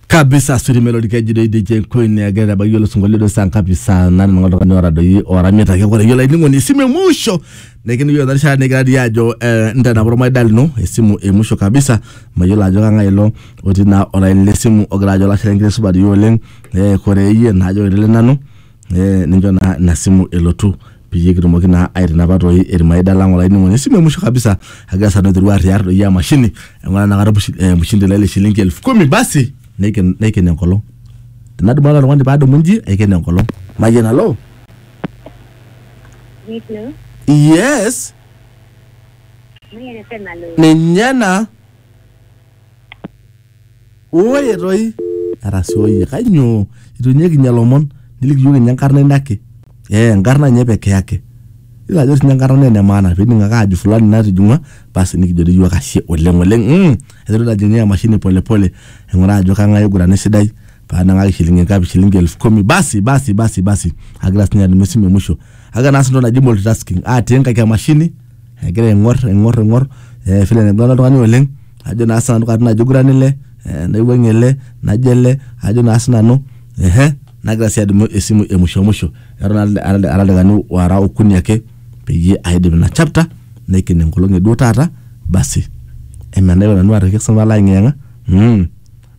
kabisa sirimelo likejidoi DJ Queen negira abaiki olosingolio do saa ngapi saa nane nang'ola oltung'ani otadoyie oramita kake ore iyiolo ainining'oni esimu e musho nekini iyiolo ena rishata nikira dii ajo eh, ntanapa ormaida lino esimu e musho kabisa mayiolo ajo kang'ae ilo otii naa olaini lesimu ogira ajo olashe lenkiteng supat iyie oleng eh, kore iyie naajo kore nanu Eh, nincho naa ina simu elotu peyie kitumoki naa aitinapa toi irmaida lang olainining'oni esimu e mwisho kabisa agira sanu aiteru arriar doi emashini eng'ura nakata mushi- eh, mshindi lai le shilingi elfu kumi basi neiken neiken enkolong tenadumu ake oltung'ani paadumu inji aiken enkolong mayian alo Hello. yes Mimi anasema lo. ninye ena Oye toi arasooyie kainyoo itu inye kinya lomon niliki iyiook inye enkarna ino ake ee enkarna inye pekee ake iyolo ajo sinye enkarna naa ene maana pining ake ajo fulani natijing'ua basi nikijo dei iyiook ashe oleng oleng mm aiteru taa ajing'ie emashini pole pole aing'uraa ajo kang'ae oigurana esidai panang'aki shilingi ngapi shilingi elfu kumi basi basi basi basi agira sinye adumu esimu e musho agira naas entoki naji multitasking atii nkaik emashini agira aing'orr aing'orr aing'orr eh vile enaiguana oltung'ani oleng. ajo naa sinanu katitin ajo aiguran ele eh, naiwuang'ie ele najo ele ajo naa sinanu ehe nagira sii adumu esimu e musho musho eton ara- ara ara ildakikani wara okuni ake peyie aidip ina chapter naiken enkolong eduo taata basi emenaipa nanu aitoki sinanu alo ayeng'iyeng'a mm.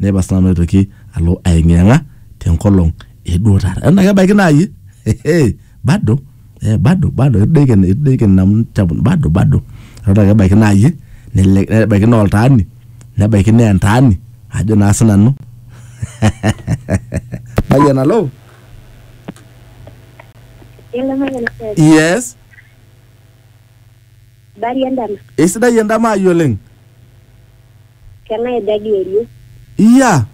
naipa sinanu aitoki alo ayeng'iyeng'a tenkolong eduo taata eton ake ebaiki naayie hehe bado eh, bado bado idaikin idaikin amu chapun bado bado eton ake ebaiki naa iyie nele- nebaiki naa oltaani nebaiki naa entaani ajo naa sinanu Mayian alo Hello, Mayian FM. yes Bari endama. Eisidai endama ai oleng. Keng'ae ejo agiori? Iyia.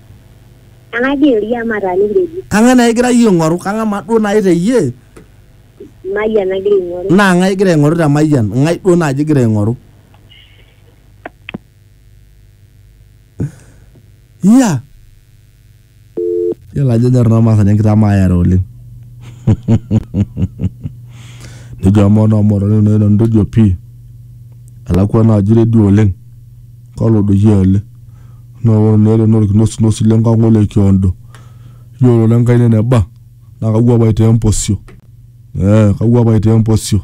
Kang'ae agiori amu ataana enkeju? Kang'ae naa igira iyie aing'oru? Kang'ae maa duo naaji te iyie? Mayian agira aing'oru. Naa ng'ae igira aing'oru te Mayian? Ng'ae duo naaji igira aing'oru? Iyia. Yiolo ajo enyor noo Maasani enkitamaayare oleng. Nejo amaa noo Motorik nai nanu tejo pii elakwa ena aji teidie oleng kalo doi ele naa ore naa ele naa olkinosinosi le nkang ole kiondo. Yiolo naa enkaina eneba naa kawuap aitaa empusio ee kawuap aitaa empusio.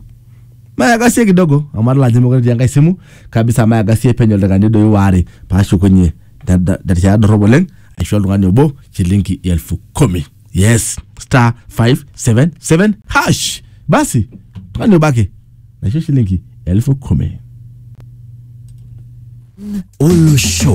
Maagasie kidogo amu adol ajo meekure etii enkae simu kabisa maagasie penyo ildaikani doi waare paashukunyie da- da- da- tiatua dorrop oleng aisho oltung'ani obo shilingi elfu kumi yes star 577 hash basi tung'ani obo ake naisho shilingi elfu kumi Olosho.